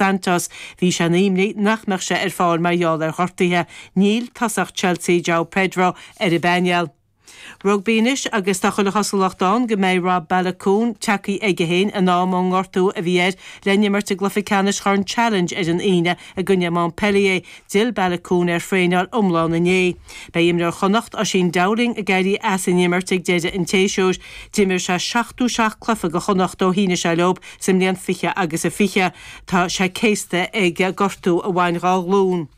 Dantos, bhí sé ina imní nach mbeadh sé ar fáil mar gheall ar ghortuithe. Níl tosach Chelsea, Joao Pedro, ar an bpainéal. Rugbaí anois agus tá chuile chosúlacht ann go mbeidh Rob Baloucoune tagtha chuige féin in am ón ngortú a bhí air le n-imirt i gcluiche ceannais Chorn Challenge ar an Aoine i gcoinne Montpellier. D'fhill Baloucoune ar thraenáil iomlán inné. Beidh imreoir Chonnacht, Oisín Dowling, ag éirí as an imirt ag deireadh an tséasúir. D'imir sé 70 seacht cluiche do Chonnacht ó shínigh sé leo sa mbliain 20 agus a 20. Tá sé céasta ag gortú a bhain dhá ghlún.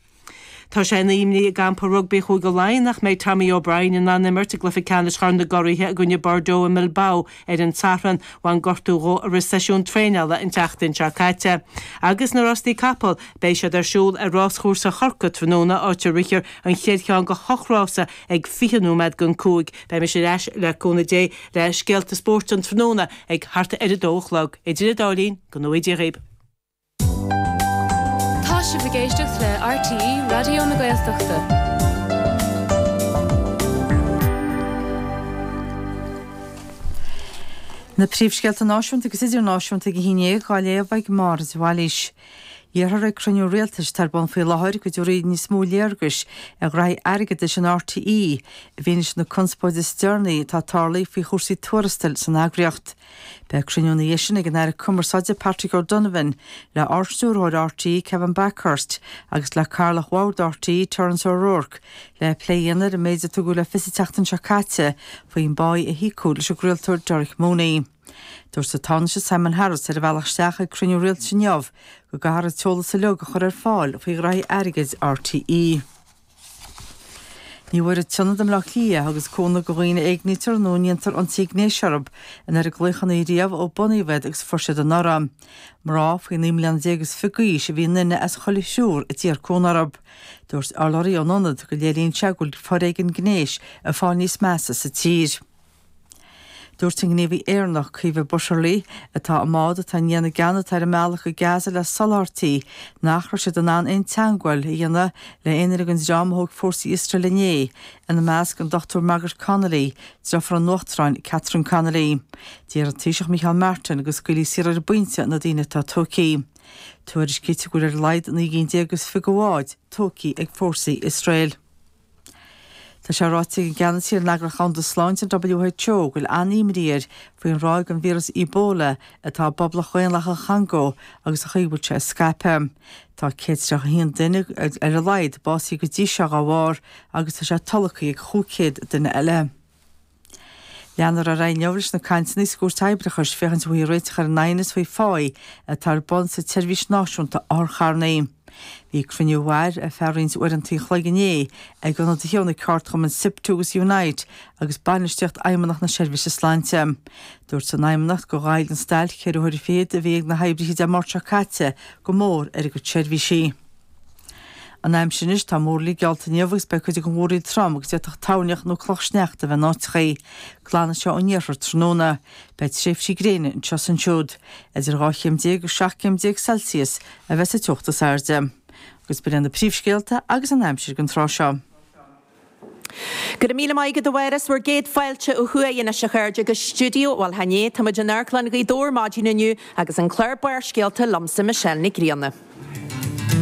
Tá sé ina imní i gcampa rugbaí Chúige Laighean nach mbeidh Tommy O'Brien in ann imirt i gcluiche ceannais Chorn na gCuradh i gcoinne Bordeaux i mBilbao Ar an tSatharn, bhain gortú dhó a rith seisiún traenála an tseachtain seo caite. Agus na Rástaí Capall, beidh siad ar siúl ar Ráschúrsa Chorcaí tráthnóna, áit a rithfear an chéad cheann de ocht rása ag 20 nóiméad go dtí cúig. Beidh mise ar ais, le cúnamh Dé, le scéalta spóirt an tráthnóna ag thart ar a dó a chlog. Idir an dá linn, go ngnóthaí Dia dhaoibh. Tá sibh ag éisteacht le RTÉ Raidió na Gaeltachta. Na príomhscéalta náisiúnta agus idirnáisiúnta ag a haon dhéag á léamh ag Máire de Bhailís. Iarrfar ag cruinniú rialtais atá ar bun faoi láthair go dtabharfaí níos mó léargais ar ghraithí airgeadais in RTÉ i bhfianaise na conspóide is deireanaí atá ag tarlú faoi chúrsaí tuarastail san eagraíocht. Beidh cruinniú ina dhiaidh sin ag an Aire Cumarsáide Patrick O'Donovan le Ardstiúrthóir RTÉ Kevin Bakhurst agus le Cathaoirleach Bhord RTÉ Terence O'Rourke le plé a dhéanamh ar an méid a tugadh le fios an tseachtain seo caite faoin bpáighe a híocadh leis an gcraoltóir Derek Mooney. Dúirt an Tánaiste Simon Harris ar a bhealach isteach ag cruinniú rialtais inniu go gcaithfear an t-eolas uiliug a chur ar fáil faoi ghraithí airgid RTÉ. Ní bhfuair an t-ionad i mBleá Cliath a thugas cúnamh go dhaoine a éignítear nó a ndéantar ionsaí gnéis orthub an oiread glaochannaí riamh ó bunaíodh iad agus fuair siad anuraidh. Mná faoi naoi mbliana déag is fiche d'aois a bhí i nduine as chuile thriúr a d'iarr cúnamh orthub. Dúirt urlabhraí ón ionad go léiríonn sé go bhfuil foréigean gnéis ag fáil níos measa sa tír. Dúirt an gníomhaí Éireannach, Caoimhe Butterly, atá i mbád atá i ndiaidh na gceann atá ar a mbealach go Gaza le soláthairtí, nach raibh siad in ann aon teagmháil a dhéanamh le aon fhear ag an dream a thóg fórsaí Iosrael inné, ina measc an Dr Margaret Connolly, deirfiúr an Uachtaráin Catherine Connolly. D'iarr an Taoiseach Micheál Martin go scaoilfí saor ar an bpointe na daoine atá tógtha. Tuairiscítear go bhfuil ar a laghad naoi gcinn déag is fiche de bháid tógtha ag fórsaí Iosrael. Tá sé ráite ag an gceannasaí ar an Eagraíocht Dhomhanda Sláinte, an WHO, go bhfuil an-imní air faoin ráig den víreas Ebola atá i bPoblacht Dhaonlathach an Chongó agus an chaoi a bhfuil sé ag scaipeadh. Tá 131 duine, ar a laghad, básaithe go dtí seo dá bharr agus tá sé tolgtha ag 500 duine eile. Leanadh ar aghaidh inniu leis na cainteanna sa gCúirt Oibreachais féachaint an bhfaighfí réiteach ar an aighneas faoi phá atá ar bun sa tSeirbhís Náisiúnta Otharcharranna. Bhí cruinniú a mhair ar feadh roinnt uaireanta an chloig inné ag ionadaithe ó na ceardchumainn Siptu agus Unite agus bainistíocht Fheidhmeannacht na Seirbhíse Sláinte. Dúirt an Fheidhmeannacht gur ghoill an stailc ceithre huaire fichead a bhí ag na hoibrithe Dé Máirt seo caite go mór ar a gcuid seirbhísí. An aimsir anois tá múrlaí geallta inniu agus beidh cuid acu mór a dhóthain trom agus d'fhéadfadh toirneach nó cloch sneachta a bheith in áiteachaí. Glanfaidh sé ón iarthar tráthnóna. Beidh tréimhsí gréine anseo is ansiúd. Idir 12 chéim agus 17 céim Celsius a bheidh sa teocht is airde. Agus b'in iad na príomhscéalta agus an aimsir den tráth seo. Go raibh míle maith agat a Mháire! 'Sé bhur gcéad fáilte ó thuaidh anois a chairde go Stiúideo bhuel chan ea. Táimid in Amharclann Ghaoth Dobhair maidin inniu agus an clár Barrscéalta liomsa Michelle Nic Grianna.